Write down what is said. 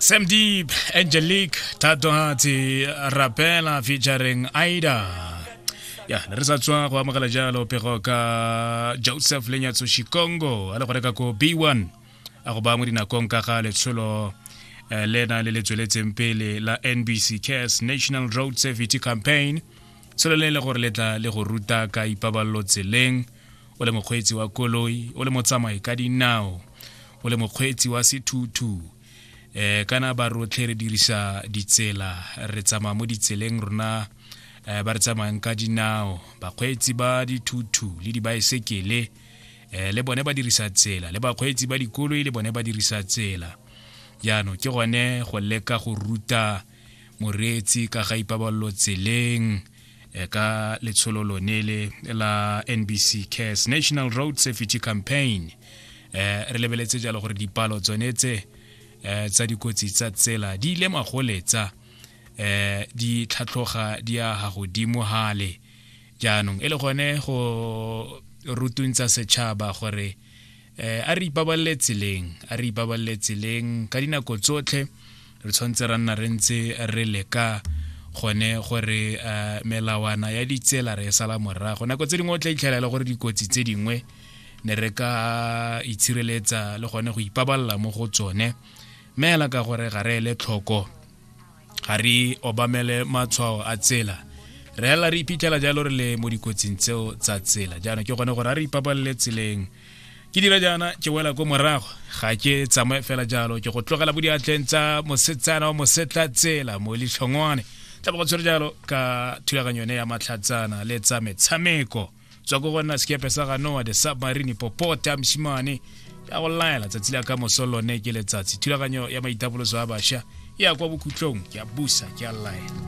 Sam Deep, Angelique, Tatohatsi, Rapela featuring Aida. ya ne re sa tswa go amogela jalo pego ka joseph lenyatso shikongo a le go reka ko b1 a go ba mo dinakong ka ga letsholo eh, lena le le tsweletseng pele la nbc cares national road safety campaign selo le e le gore le tla le go ruta ka ipabalelo tseleng o le mokgweetsi wa koloi o le motsamai ka dinao o le mokgweetsi wa sethuthu eh kana ba rotlhe re dirisa ditsela re tsamaya mo ditseleng rona eh, ba re tsamayang ka dinao bakgweetsi ba dithuthu le dibaesekele eh, le bone ba dirisa tsela le bakgweetsi ba dikoloi le bone ba dirisa tsela jaanong ke gone go leka go ruta moreetsi ka ga ipabalelo tseleng e ka letsholo lone le la nbc cares national road safety campaign um re lebeletse jalo gore dipalo tsone tse um tsa dikotsi tsa tsela di ile magoletsa um di tlhatlhoga di ya ga godimo gale jaanong e le gone go rutuntsa setšhaba gore eh, a re ipabalele tseleng a re ipabalele tseleng ka dinako tsotlhe re tshwanetse ra nna re ntse re leka gone gore uh, melawana ya ditsela re e sala morago nako tse dingwe o tla itlhela e le gore dikotsi tse dingwe ne re ka itshireletsa le gone go ipabalela mo go tsone meela ka gore ga re ele tlhoko ga re obamele matshwao a tsela re hela re iphitlhela jalo re le mo dikotsing tseo tsa tsela jaanong ke gone gore a re ipabalele tseleng ke dira jaana ke wela ko morago ga ke tsamaye fela jalo ke go tlogela bo diatleng tsa mosetsana wa mosetla tsela mo litlhongwane tla bo go tshwere jalo ka thulaganyo yone ya matlhatsana le tsa metshameko tswa ko gona sekepe sa ga noa the submarine popota mosimane ya go laela tsatsi la ka moso lone ke letsatsi thulaganyo ya maitapoloso a bašwa ya kwa bokhutlong ke a busa ke a laela